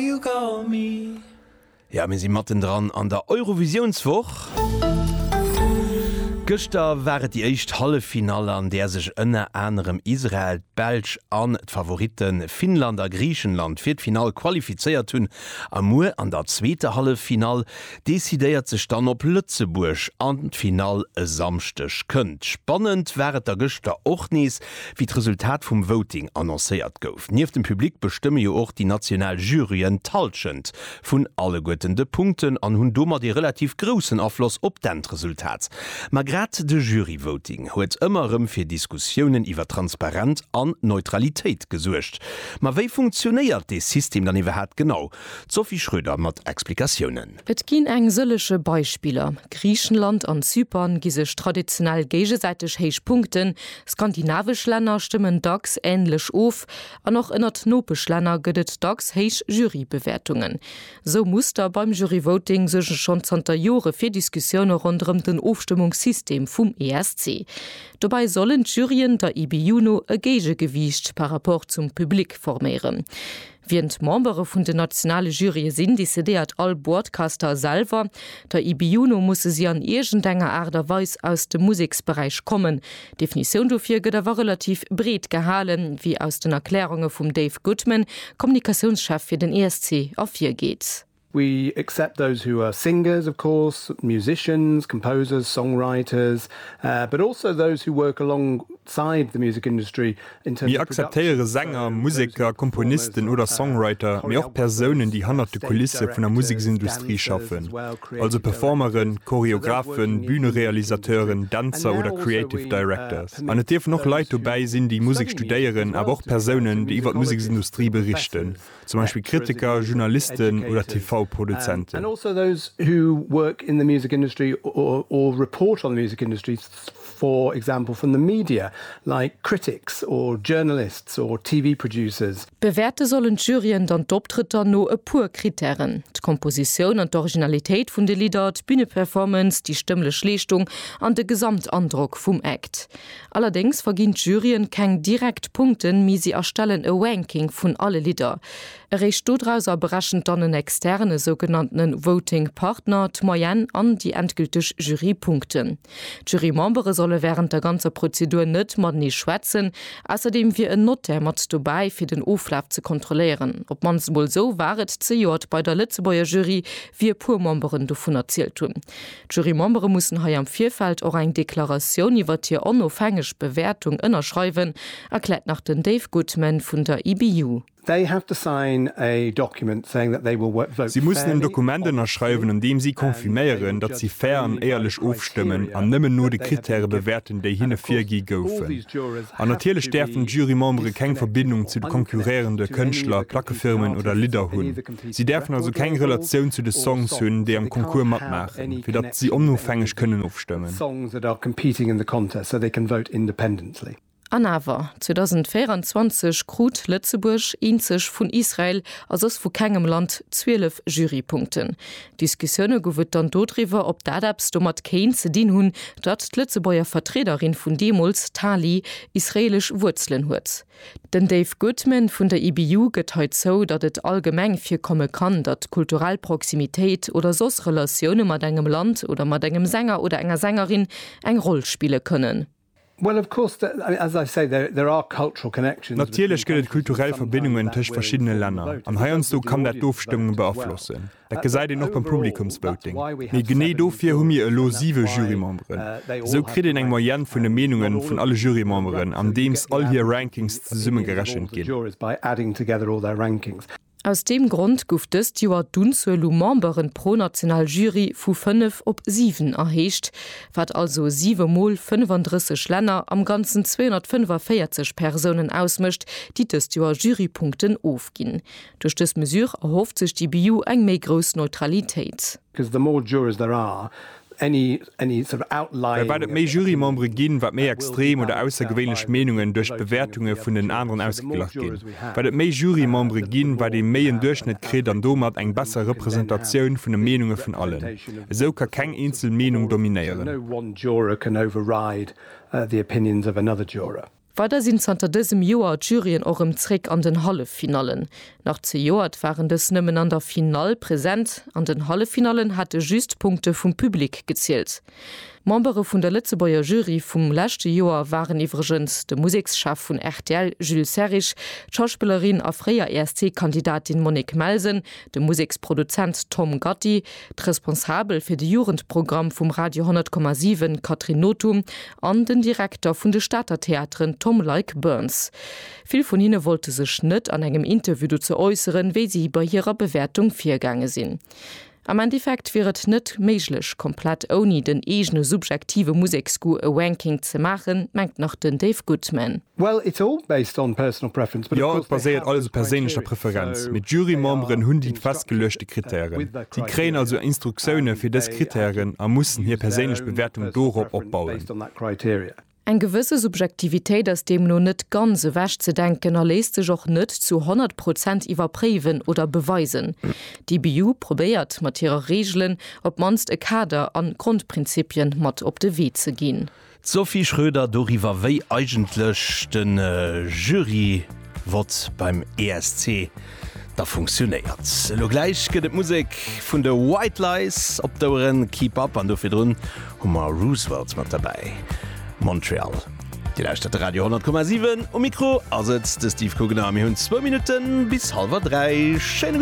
you got me. Jo, mir si mattendran an der Eurovisiounswoch. Gëschter war et déi éischt Halleffinall, an där sech ënner anerem Israel, d'Belsch an d'Favoritte Finnland a Griichenland fir d'Finall qualifizéiert hunn. A muer an der zweeter Halleffinall decidéiert sech dann, ob Lëtzebuerg an d'Finall e Samschdeg kënnt. Spannend war et da gëschter och nees, Wéi d'Resultat vum Voting annoncéiert gouf, nieft dem Public bestëmme jo och déi national Juryen d'Hallschent vun alleguerten de Punkten an hunn domat ee relativ groussen Afloss op d'Endresultat. Ma grad de Juryvoting huet ëmmer erëm fir Diskussiounen iwwer Transparent an Neutralitéit gesuergt. Ma wéi funktionéiert dee System dann iwwerhat genau? D'Sophie Schröder mat Explikatiounen. Et ginn eng sëlleche Beispiller, Griichenland an Zypern gi sech traditionell géigesäiteg héich Punkten, skandinavesch Länner stëmmen dacks änlech of an och ënnert Nopeschlänner gëtt et dacks héich Jurybewäertungen. Sou Muster beim Juryvoting suerge schonn zanter Jore fir Diskussioune ronderëm den Ofstëmmungssystem vum ESC. Dobäi sollen d'Juryen der IBU no e Géigegewiicht par rapport zum Public forméieren. Wien d'Membere vun den nationale Jurye sinn, decidéiert all Boardcaster selwer. Der IBU no musse si an iergend enger Aart a Weis aus dem Museksberäich kommen. D'Definitioun dofir gëtt awer relativ breet gehalen, wéi aus den Erklärunge vum Dave Goodman, Kommunikatiounschef fir den ESC, ervirgeet. We accept those who are singers, of course, musicians, composers, songwriters, but also those who work alongside the music industry in terms of production. Mir akzeptéiere Sänger, Museker, Komponisten oder Songwriter, mee och Persounen, déi hannert de Kulisse vun der Museksindustrie schaffen, also Performeren, Choreographen, Bühnerealisateuren, Dänzer oder Creative Directors. An et dierfen och Leit dobäi sinn, déi Musek studéieren, awer och Persounen, déi iwwer d'Museksindustrie berichten. zum Beispill Kritiker, Journalisten oder TV-Produzenten. Bewäerte sollen d'Juryen dann d'Optrëtter no e puer Krittären, d'Kompositioun an d'Originalitéit vun de Lidder, d'Büneperformance, déi stëmmlech Leeschtung an de Gesamtandrock vum Act. Allerdéngs verginn d'Juryen keng direkt Punkten, mee si erstellen e Ranking vun alle Lidder. Eréischt dodrauser berechent dann en externen, e sougenannte Voting Partner, d'Moyenne an déi endgülteg Jurypunkten. D'Jurymembere solle wärend der ganzer Prozedur net matenee schwätzen. Ausserdeem wier en Notaire mat dobäi, fir den Oflaf ze kontrolléieren. Op d'mannst emol esou war et zejoert bei der Lëtzebuerger Jury, wéi e puer Memberen dovun erzielt hunn. D'Jurymembere mussen hei am Virfeld och eng Deklaratioun iwwert hir onofhängeg Bewäertung ënnerschreiwen, erkläert nach den Dave Goodman vun der IBU. Si mussen en Dokument ënnerschreiwen, an deem si confirméieren, datt si fair an éierlech ofstëmmen an nëmmen no de Krittäre bewäerten, déi hinne virgi goufen. An natierlech däerfen d'Jurymembere keng Verbindung zu de konkurréierende Kënschtler, Plackefirmen oder Lidder hunn. Si däerfen also keng Relatioun zu de Songs hunn, déi am Concours matmaachen, fir datt si onofhängeg kënnen ofstëmmen. An awer, 2024 krut Lëtzebuerg, eenzeg vun Israel a soss vu kengem Land, 12 Jurypunkten. Diskussioune gouf et dann dodriwwer, ob dat eppes domat kéint ze dinn hunn, datt d'Lëtzebuerger Vertriederin vun deemools, d'Tali, israeelesch Wuerzelen huet. Den Dave Goodman vun der IBU gëtt hei zou, datt et allgemeng virkomme kann, datt kulturell Proximitéit oder soss Relatioune mat engem Land oder mat engem Sänger oder enger Sängerin eng Roll spille kënnen. Natierlech gëtt et kulturell Verbindungen tëscht verschiddene Länner an heiansdo kann dat d'Ofstëmmung beaflossen. Dat gesäit een och beim Publikumsvoting. Mee genee dofir hu mir elo siwe Jurymemberen. Esou kritt een eng Moyenne vun de Meenunge vun alle Jurymemberen, andeems all hir Rankings zesumme gerechent ginn. Aus deem Grond gouf dëst Joer d'Unzuel u Memberen pro national Jury vu fënnef op siwen erhéicht, wat also siwe Mol 35 Länner, am Ganzen 245 Persounen ausmécht, déi dëst Joer Jurypunkten ofginn. Duerch dës Mesure erhofft sech d'IBU eng méi grouss Neutralitéit. Well wat et méi Jurymembere ginn, wat méi extrem oder aussergewéinlech Meenungen duerch d'Bewäertunge vun den aneren ausgeglach ginn. Wat et méi Jurymembere ginn, wat ee méi en Duerchschnëtt kritt an domat eng besser Representatioun vun de Meenunge vun allen. Esou ka keng eenzel Meenung dominéieren. Weider sinn zanter dësem Joer d'Juryen och rëm zréck an den Halleffinallen. Nach zejoert waren dës nëmmen an der Finall present. An den Halleffinallen hate just d'Punkte vum Public gezielt. Membere vun der Lëtzebuerger Jury vum leschte Joer waren iwwregens de Musekschef vun rtl Jules Serrig, d'Schauspillerin a fréier ESC-Kandidatin Monique Melsen, de Museksproduzent Tom Gatti, d'Responsabel fir de Jugendprogramm vum Radio 10,7 Catherine Nothum an den Direkter vun de Stater Theateren Tom Leick-Burns. Vill vun hinne wollte sech net an engem Interview dozou äusseren, wéi si bei hirer Bewäertung virgaange sinn. Am Endeffekt wier et net méiglech, komplett ouni den eegene subjektive Museksgoût e Ranking ze maachen, mengt nach den Dave Goodman. Well it's all based on personal preference, but of course they have this criteria. Jo, et baséiert alles op perséinlecher Preferenz, mee d'Jurymemberen hunn déi festgeluechte Kritären. Si kréien also Instruktioune fir dës Kritären a mussen hir perséinlech Bewäertung dorop opbauen. Eng gewësse Subjektivitéit ass deemno net ganz ewech ze denken a léisst sech och net zu 100 Prozent iwwerpréiwen oder beweisen. D'IBU probéiert mat hire Reegelen op d'mannst e Kader an Grondprinzipien mat op de Wee ze ginn. D'Sophie Schröder doriwwer, wéi eigentlech de Jury-Vott beim ESC da funktionéiert. Elo gläich gëtt et Musek vun de White Lies op d'Oueren, Keep Up, an do virdrun hu mer Roosevelt mat derbäi, Montreal. Dir lauschtert de Radio 10,7. Um Mikro ass et de Steve Kugner a mir hunn zwou Minutte bis hallwer dräi. Schéine.